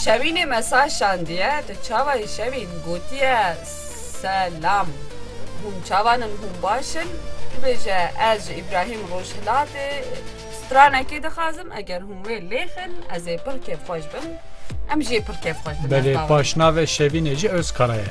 Şevînê me sar şandiye, tu çawa î Şevîn? Gotiye, Se-lam. Hûn çawan in, hûn baş in? Bibêje, ez ji Îbrahîm Rojhilatê stranekê dixwazim, eger hûn wê lêxin, ez ê pir kêfxweş bim. Em jî ê pir kêfxweş bin. Belê, paşnavê Şevînê jî Ozkara ye.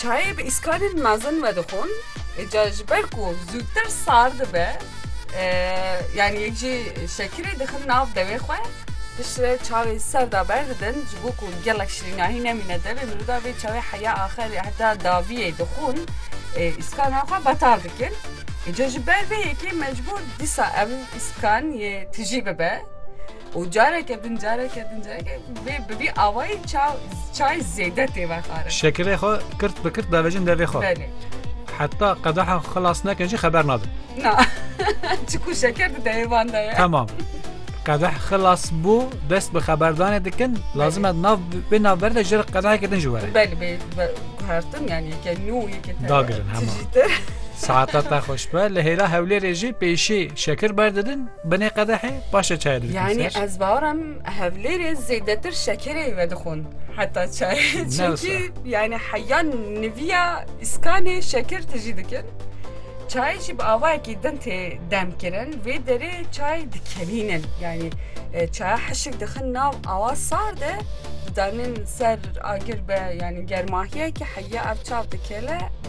Çayê bi îskarên mezin vedixwin îcar ji ber ku zûtir sar dibe yanî yek jî şekirê dixin nav dewê xwe. Piştre çayê serd a berdidin ji bo ku gelek şirînahî nemîne devê miroda vê çayê heya axerê heta daviyê dixwin îskana xwe betal dikin. Îcar ji ber vê yekê mecbûr dîsa ev îskan yê tijî bibe. û careke din careke din careke vê bi vî awayî çaw çay zêde tê vexwarin. Şekirê xwe kirt bi kirt davêjin devê xwe. Belê. Heta qedaha xwe xilas nekin jî xeber nadin. Na. Çiku şeker di deyê van de ye. Tamam. Qedah xilas bû dest bi xeberdanê dikin lazim e nav bê navber de ji re qedaheke din jî were. Belê bê hertin yani yeke nû yeke te. Dagirin hema. Tijî te. Saeta te xweş be li hêra Hewlêrê jî pêşî şekir berdidin Binê qedehê paşê çayê didikin ser. Yanî ez bawer im Hevlêrê zêdetir şekerê vedixwin heta çayê. Çimkî yanî heya nivîya îskanê şeker tijî dikin. Çayê jî bi avayekî din tê demkirin. Vê derê çay dikelînin. Yanî çaya hişk dixin nav awa sar de didanin ser agir be yanî germahiyekî heya ev çav dikele.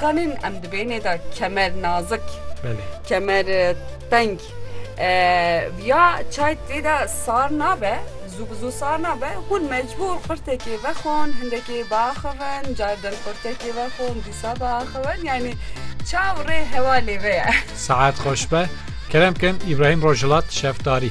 Kanên em di bênê de kemer nazik, kemer teng ya çay tê de sar nabe, zû bi zû sar nabe, hûn mecbûr qurtekê vexwin, hindekê biaxivin, carê din qurtekê vexwin, dîsa biaxivin yanî çaw rê hewa lê ve ye. Saet xweş be. Kerem bikin Îbrahîm Rojhilat, Şefdarî.